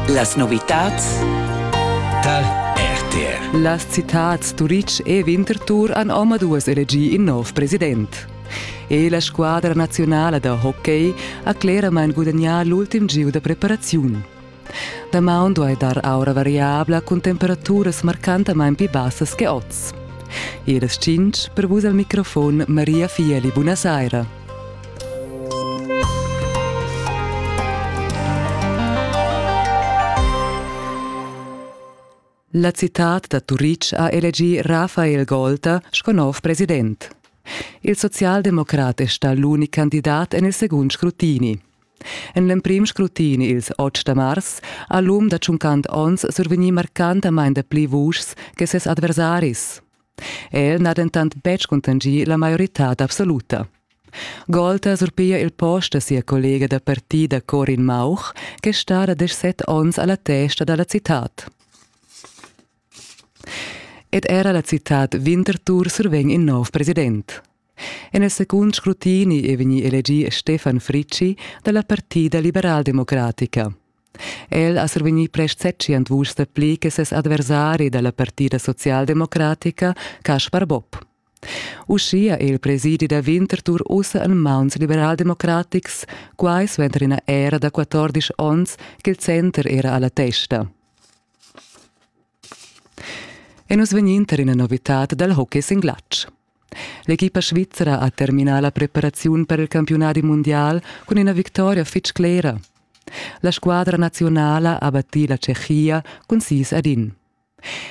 Las novitads Tal RTR. Las citads Turitg e Winterthur han omaduas elegì in nov president. E la squadra nazionala da hockey ha cleramain gudagnà l'ultim gieu da preparaziun. Damaun duai dar aura variabla cun temperaturas marcantamain pli bassas che oz. E las 5 per vus al microfon Maria Fieli, buona saira. La citad da Turitg ha elegì Rafael Golta sco nov president. Il socialdemocrat è stà l'unic candidat en il segund scrutini. En l'emprim scrutini ils 8 da mars ha l'um da 50 onns survegnì marcantamain dapli vuschs che ses adversaris. El n'ha dentant betg cuntanschì la maioritad absoluta. Gold ha surpia il post da sia collega da partida Corin Mauch, ch'è stada desch set onns a la testa da la citad. Ed era la citad Winterthur survegn in nov president. En il secund scrutini è vegnì elegì Stefan Fricci da la Partida liberaldemocratica. El ha survegnì prest setschient vuschs dapli che ses adversari da la Partida socialdemocratica, Kaspar Bob. Uschia è il presidi da Winterthur ussa en mauns liberaldemocratics, quai suenter ina era da 14 onns ch'il center era alla testa. E nus vegnin tar ina novitad dal hockey sin glatsch. L'equipa svizra ha terminà la preparaziun per il campiunadi mundial cun ina victoria fitg clera. La squadra naziunala ha battì la Tschechia cun sis ad in.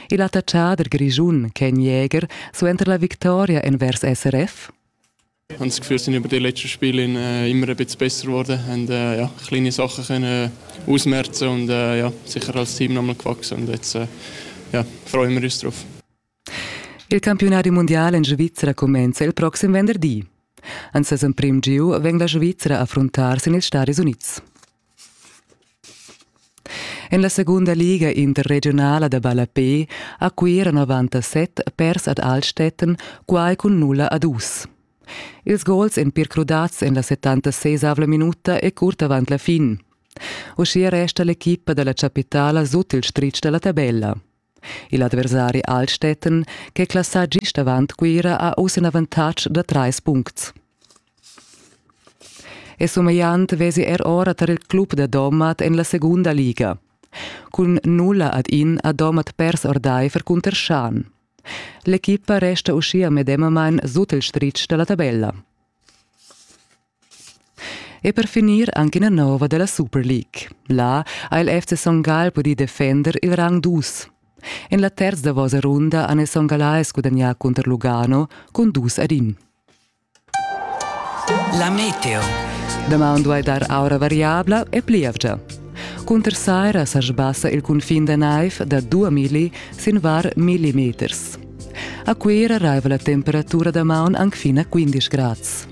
Il attacchader grischun Ken Jäger suenter la victoria envers SRF Ich habe das Gefühl, sind über die letzten Spiele in, äh, immer ein bisschen besser geworden, haben äh, ja, kleine Sachen können ausmerzen und äh, ja, sicher als Team nochmal gewachsen. Und jetzt äh, ja, freuen wir uns drauf. Il campiunadi mundial en Svizra cumenza il proxim venderdi. En ses emprim giu vegn la Svizra a affruntar sin ils Stadis Unids. En la segunda liga interregionala da ballapé a Cuira 97 pers ad Altstetten quai cun nulla a dus. Ils gols èn pir crudats en la 76 minuta e curt avant la fin. Uschia resta l'equipa da la chapitala sut il stritg da la tabella. Il adversari Altstätten, ch'è classà gist avant Cuira, ha uss in avantatg da trais puncts. E sumegliant vesi er ora tar il club da Domat en la segunda liga. Cun nulla ad in ha Domat pers ordaifer cunter Schan. L'equipa resta uschia medemamain sut il stritg da la tabella. E per finir anche una nova della Super League. Là ha il FC Son Gall pudì defender il rang dus. En la terza davosa runda han Son Gallais gudagnà contro Lugano con dus ad in. La meteo. Doman duai dar aura variabla e plievgia. Cunter saira sa sbassa il cunfin da naiv da 2 milli sin var millimeters. A Cuira raiva la temperatura da maun anc fin a 15 grads.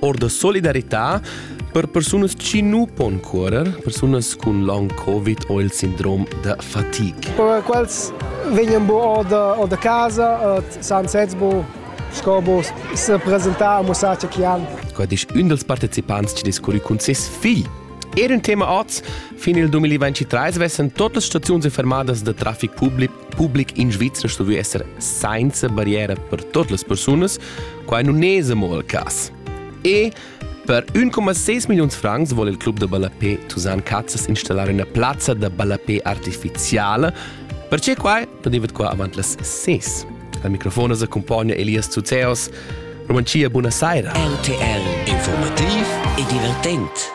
or da solidarità per persunas che nu pon curer, persunas cun long covid o il sindrom da fatica. Per quels vegnan bo o da, o da casa, eh, san sez bo sco bo se presentar a musace che han. Quai disch ün dels partecipants che discurri cun ses figl. Er un tema oz, fin il 2023 vessen tote staziuns fermadas de trafic public, public in Svizzera sto esser senza barriera per totes les persones Quai nun es amo il cas. E per 1,6 milliuns francs vole il club da ballapè Tusan Cazzas installar üna plazza da ballapè artificiala. Perche quai da divet qua avant las 6. Al microfon as accompagna Elias Zuzeos. Romantia, buona saira. RTL Informativ e divertent.